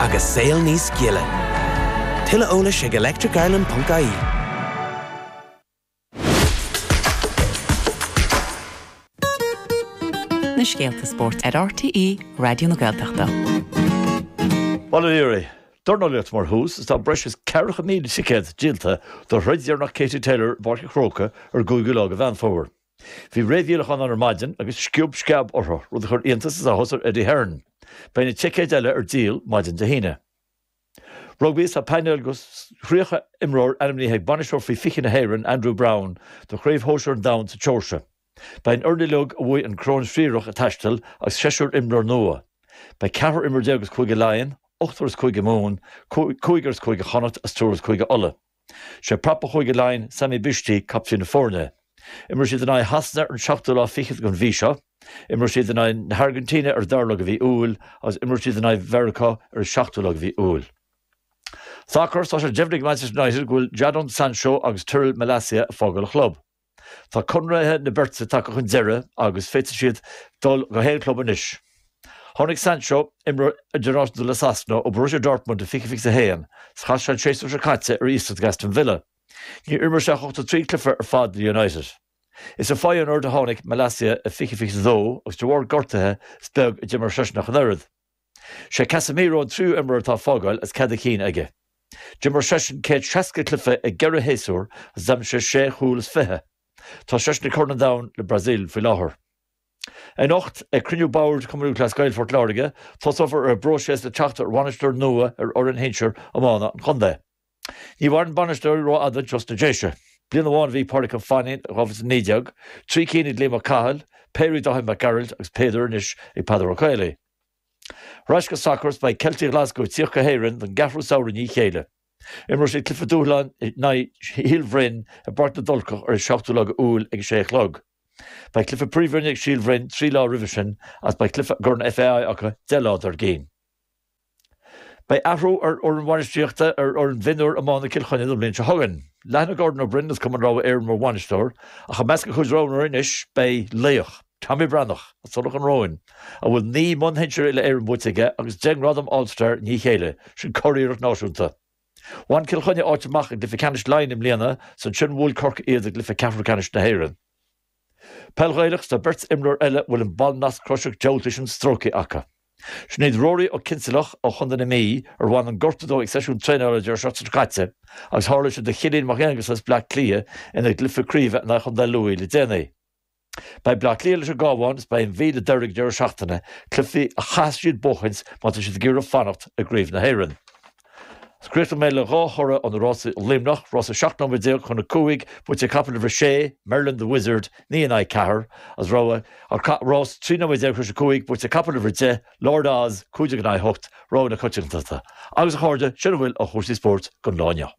agus saol níos gile. Tuilleadh eolais ag electricireland.ie. na scéalta spóirt ar RTÉ Raidió na Gaeltachta. Bhuel, dornálaíocht ar dtús is tá breis is 40,000 ticéad díolta do throid dheireanach Katie Taylor i bPáirc an Chrócaigh ar an gcúigiú lá de Mheán Fómhair. Bhí réamhdhíolacháin ann ar maidin agus sciob sceab orthu, rud a chuir iontas is áthas ar Eddie Hearn. Beidh na ticéid eile ar díol maidin Dé hAoine. Rugbaí, Tá painéal de 30 imreoir ainmnithe ag bainisteoir faoi 20 na hÉireann, Andrew Browne, do Chraobh Shóisir an Domhain sa tSeoirsia. Beidh an fhoireann uilig a bhuaigh an Choróin Thriarach ag taisteal agus seisear imreoir nua. Beidh ceathrar imreoir déag as Cúige Laighean, ochtar as Cúige Mumhan, cúigear as Cúige Chonnacht agus triúr as Cúige Uladh. Sé prapa Chúige Laighean, Sami Bishti, captaen na foirne. Imreoidh siad in aghaidh Shasana ar an seachtú lá fichead den mhí seo, imreoidh siad in aghaidh na hAirgintíne ar an dara lá de mhí Iúil agus imreoidh siad in aghaidh Mheiriceá ar an seachtú lá de mhí Iúil. Sacar, Tá sé deimhnithe ag Manchester United go bhfuil Jadon Sancho agus Tyrell Malacia ag fágáil an chlub. Tá conradh na beirte tagtha chun deiridh agus féadfaidh siad dul go haon chlub anois. Tháinig Sancho, imreoir idirnáisiúnta le Sasana, ó Borussia Dortmund i 2021 agus chaith sé an séasúr seo caite ar iasacht ag Aston Villa. Níor imir sé ach 83 cluiche ar fad le United. Is ó Feyenoord a tháinig Malacia i 2022 agus de bharr gortuithe is beag a d'imir seisean ach an oiread. Sé Casemiro an tríú imreoir atá ag fágáil agus cead a chinn aige. D'imir seisean céad seasca cluiche i gceithre shéasúr agus d'aimsigh sé sé chúl is fiche. Tá seisean ag Corn an Domhain leis an mBrasaíl faoi láthair. Anocht, ag cruinniú boird Chumann Lúthchleas Gael Phort Láirge, tosófar ar an bpróiséas le teacht ar bhainisteoir nua ar fhoireann shinsir iomána an chontae. Ní mhaireann bainisteoirí rófhada ansna Déise. Bliain amháin a bhí ag Pádraig Ó Fainnín, 2019, trí cinn ag Liam Ó Cathail, péire ag Dáithí Mac Gearailt agus péire anois ag Peadar Ó Caollaí. Ar ais go sacar is beidh Ceiltigh Ghlaschú ag tíocht go hÉirinn don gceathrú samhradh i ndiaidh a chéile. Imreoidh siad cluiche dúshláin in aghaidh Shíol Bhroin i bPáirc na dTulcach ar an 7ú lá de Iúil ag a sé a chloig. Beidh cluiche príomhroinne ag Síol Bhroin trí lá roimhe sin agus beidh cluiche i gCorn FAI acu deich lá dár gcinn. Beidh athrú ar fhoireann bhainistíochta ar fhoireann mhionúir iomána Chill Chainnigh an bhliain seo chugainn. Leanfaidh Gordon Ó Broin as Cumann Rabhartaigh Éireann mar bhainisteoir ach i measc a chuid roghnóirí anois beidh laoch, Tommy Breathnach, as Tulach Ruáin, a bhfuil naoi mbonn sinsir Uile-Éireann buaite aige agus deich ngradam All-Star i ndiaidh a chéile, sin curiarracht náisiúnta. Bhain Cill Chainnigh áit amach i gcluiche ceannais Laighean i mbliana, is ansin a bhuail Corcaigh iad i gcluiche ceathrú ceannais na hÉireann. Peil Ghaelach tá beirt imreoir eile a bhfuil an ball nasc croiseach dúbailte sin stróicthe acu. Sin iad Ruairí Ó Cinnsealach ó Chontae na Mí, ar bhain an gortú dó ag seisiún traenála an deireadh seachtaine seo caite, agus tharla sé do Chillín Mac Aonghusa as Bleá Cliath ina gcluiche craoibhe in aghaidh Chontae Lú le déanaí. Beidh Bleá Cliath leis an gCabhán is beidh an Mhí le Doire ag an deireadh seachtaine, cluichí a chaithfeas siad a bhuachaint má tá siad ag iarraidh fanacht i gCraobh na hÉireann. Críochnóidh mé le dhá thoradh ó na rásaí i Luimneach, rás 17 nóiméad chun a cúig, buaite ag capall uimhir 6, Merlin the Wizard, naoi in aghaidh ceathar, an rogha, agus rás 13 nóiméad tar éis a cúig, buaite ag capall uimhir 10, Lord Oz, cúig déag in aghaidh a hocht, rogha na coitiantachta. Agus, a chairde, sin a bhfuil ó chúrsaí spóirt don lá inniu.